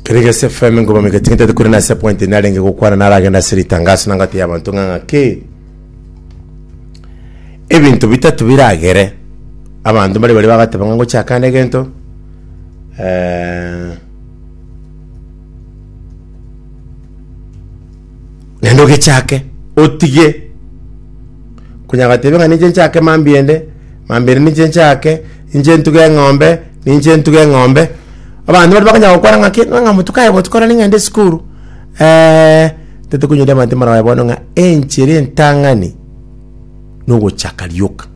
Keregas FM ngoma migatinga tete kuri nase point ni arenge gokwana naragenda ase ritangaso nangati y'abanto ng'a ng'aki ebinto bitatu biragere abanto mbari bari bagateba ng'a ngochakana egento eh, Naende ogechake, otige. Konya agatebia ng'a ninche nchake mambia ende, mambia ende ninche nchake, ninche ntuge eng'ombe, ninche ntuge eng'ombe. Abanto baria bakanya gokwana ng'a ki, ng'a botuko aye botuko nari ng'ende esukuru. Eh, totokonyoria abanto moroe bono ng'a enchera entang'ani nogochaka rioka.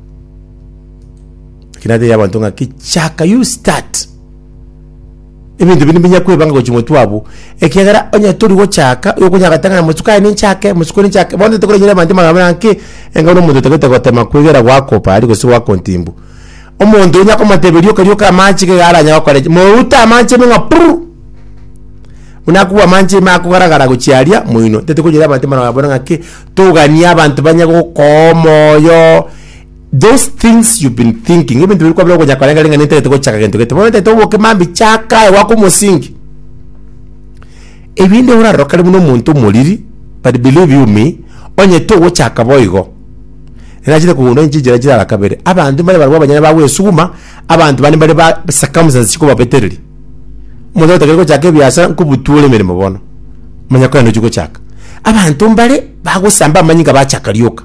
Lakini natebia abanto ng'aki chaka, you start. Ebinto ebi nibinya kwebanga gochia omotwe abwo, ekiagera onye tori gochaka, igo okonyara goteba ng'a mosuka aye ninchake, mosuka oria ninchake, bono tete koranyire abanto amang'ana buna naki, enga buna omonto otagete gotema kwegera gwakopa aria gose gwakontimbu. Omonto onya komotebia rioka rioka amache iga iga aranyare gokora eki, moute amache ime ng'a pururu, buna akobua amache ime akogara gara gochia aria moino. Tete koranyire abanto amang'ana buna ng'aki, toganie abanto banye gokoa omoyo. Those things you've been thinking, ebinto biri kwabire okonya korenga ring'ana etagete gochaka gento gete. Bono etaete oboke mambi chaka aye gwaka omosingi. Ebinde orarorokane buna omonto omoriri, but believe you me, onye togochaka boigo. Erachete kogundwa inche inchera chirara kabere. Abanto mbare barabwo abanyene bagwesuguma, abanto bande mbare ba circumstances chikobabetereria. Omonto otagete gochaka ebiasara nkobuture emeremo bono. Manya kogenda ochie gochaka. Abanto mbare bagosamba amanyinga bachaka rioka.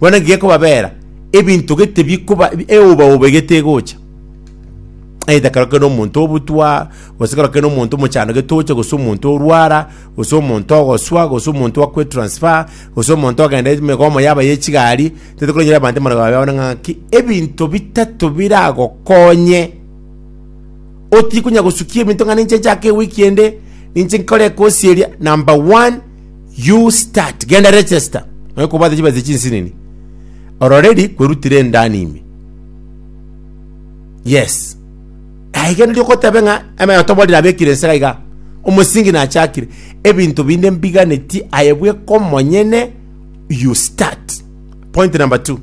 Bono naki gekobabeera, ebinto gete bikoba ebi- eobaoba egete egocha. Either korokire nomonto obutwa, gose korokire nomonto omochando gete oche, gose omonto orwara, gose omonto ogoswa, gose omonto akwe transfer, gose omonto ogenda emegomo yaba ya echigari, tete koronyora abanto emarwago yabo yabana ng'aki, ebinto bitato biragokonye otikonya gosukia ebinto ng'a ninche nchake ewiki ende, ninche nkore ekosi eria, number one, you start genda register nonya kobwate chibesa chinsinini ororeri kwerutire endani ime yes aiga nari okotabe ng'a eme otoborire abekire ense iga iga omosingi nachakire ebinto binde mbiganeti aye bweka omonyene you start point number two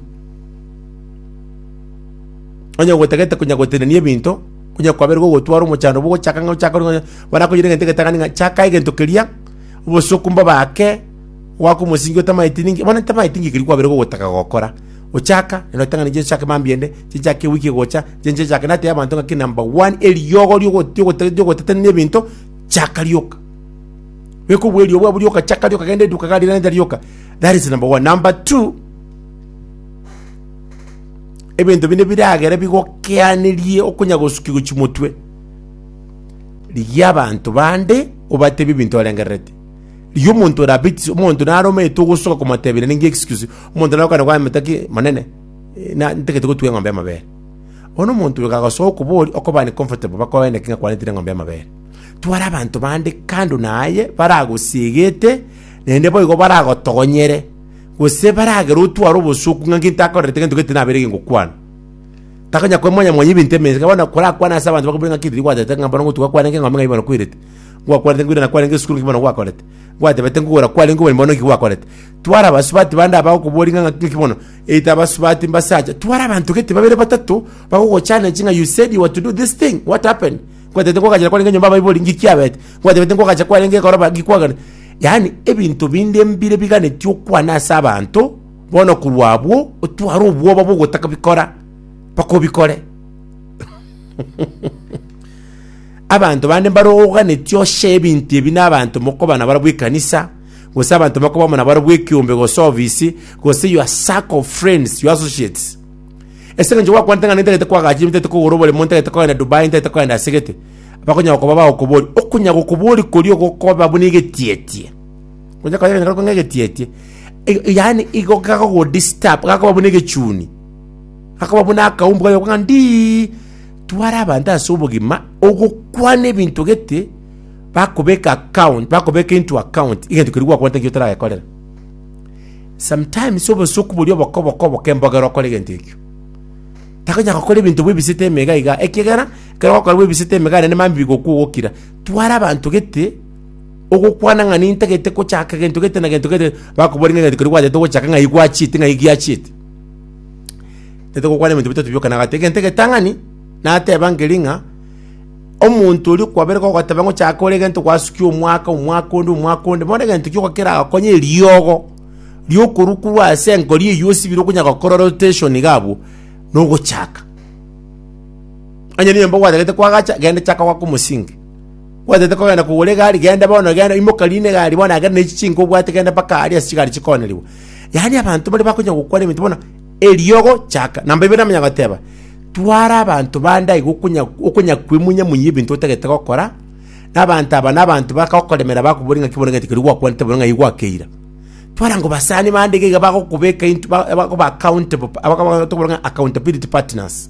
onye gotagete konya gotenenia ebinto onya kwaberwa gotwara omochando bogochaka ng'a ochaka bono akoyire egento egetang'ani ng'a chaka egento keria Obosuku mbobake gwaka omosingi otamaeti ninki? Bono ntamaeti ninki ekeri kwabeire gogotaka gokora? Ochaka, naende otang'ana ninche nchake mambia ende, ninche nchake ewiki egocha, ninche ninche nchake. Natebia abanto ng'aki number one, eriogo riogo- riogote- riogotetanera ebinto, chaka rioka. Beka obuya eriogo bwabo rioka, chaka rioka, genda eduka iga riira renta rioka. That is number one. Number two, ebinto binde biragere bigokeanerie okonyagosukiwa chimotwe. Rigia abanto bande, obatebie ebinto orengererete. Rigia omonto ore abaitisie, omonto nare omeete ogosoka komotebia nere ng'eexcuse. Omonto nare okogenda kwamenta ki, Monene, eh, na- ntagete gotuga eng'ombe y'amabere. Bono omonto oyo kagosoa okoboria, okobani comfortable bakoe naki ng'a kwanetire eng'ombe y'amabere. Tware abanto bande kando na aye, baragosiegete, naende boigo baragotogonyere, gose baragere otware obosuku ng'a nki ntakorerete gento gete nabeire egengokwana. Takonyara koba mwanyamwaya ebinto emensa, ekero bono korakwane ase abanto bakobire ng'a ki riria gwatagete ng'a bono ngotugwa kwarenge eng'ombe ng'ai bono kwerete, ngwakwanete ngwirana kwarenge esukuru ng'ai bono gwakorete, ngwatebete nkogora kwarenge oboremi bono nki gwakorete. Tware abasubati bande aba bagokoboria ng'a ng'aki bono eita abasubati mbase acha, tware abanto gete babere batato bagogochallenge ng'a you said you were to do this thing, what happened? Kwatebete nkogachera kwarenge enyomba abaibori ng'ai kiabete? Kwatebete nkogacha kwarenge ekoroba ng'ai kwagane? Yaani ebinto binde mbire biganeti okwana ase abanto, Bono korwa abwo otware obwoba bw'ogotaka bikora, mpaka obikore. Abanto bande mbare oganetie oche ebinto ebi n'abanto mokoba nabarabwo ekanisa, gose abanto mokoba amo nabarabwo ekeombe gose ofisi, gose your circle of friends, your associates. Ase eng'encho gwakwanete ng'a nintagete kwagacha, nintagete kogora oboremo, nintagete kogenda Dubai, nintagete kogenda ase gete, bakonyara koba bagokoboria. Okonyara gokoboria koria ogokoba buna egetietie. Onye kanya kanyakora kong'a egetietie. I- i- Yaani igo gakogodistabu, gakoba buna egechuni. Gakoba buna akaumbu kagokwa ng'a ndii. Tware abanto ase obogima, ogokwana ebinto gete, bakobeka account, bakobeka into account, egento keria gwakwanete ekio otaragekorera. Sometimes obosoku boria obokoboko oboke mbogera okore egento ekio. Takonyara gokora ebinto bwebisete emega iga, ekiagera, ekero ogokora bwebisete emega nende mambia bigokwa ogokira. Tware abanto gete, Ogokwana ng'a nintagete gochaka gento gete na gento gete, bakobori ng'a gento keria gwatagete gochaka ng'ai gwachiete ng'ai giachiete. Tete gokwana ebinto bitato bioka na agati egento egetang'ani, nateba nkeri ng'a omonto oria okwabere gogoteba ng'a ochake kore egento gwasukia omwaka omwaka onde omwaka onde bono egento gioka keragokonye eriogo riokorukorwa ase enkori eywo osibire okonya gokora rotation iga abwo, nogochaka. Onye nenyomba gwatagete kwagacha, genda chaka gwake omosinge. Gwataete kogenda kogora egari, genda bono, genda, imoka rina egari bono, agere ne chichinka obwate, genda mpaka aria ase chigari chikoonerigwa. Yaani abanto baria bakonya gokwana ebinto bono, eriogo chaka. Namba ibere namanya goteba, twara abanto bande aiga okonya okonya kwemunya munya ebinto otagete gokora, na abanto aba na abanto bakagokoremera bakobori ng'aki bono egento keria gwakwanete bono ng'ai gwakeira. Twara ngo basani bande iga iga bagokobeka into ba- bakoba accountable pa- abakaba- tokobora ng'a accountability partners.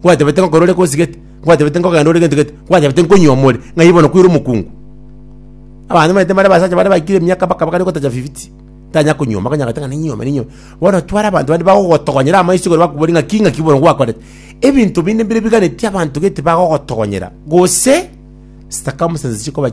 Nkwatebete ngokora ore gosigete, nkwatebete nkogenda ore gento gete, nkwatebete nkonywa omore, ng'ai bono kwire omokungu? Abanto omanyete mbare abasacha bare baikire emiaka bakaba gari gotacha fifiti, tanya konywa omore, onye agoteba ng'a ninyuome ninyuome. Bono tware abanto bande bagogotogonyera amaiso igoro bakobori ng'aki ng'aki bono gwakorete. Ebinto binde mbire biganetie abanto gete bagogotogonyera, gose circumstances chikoba chi.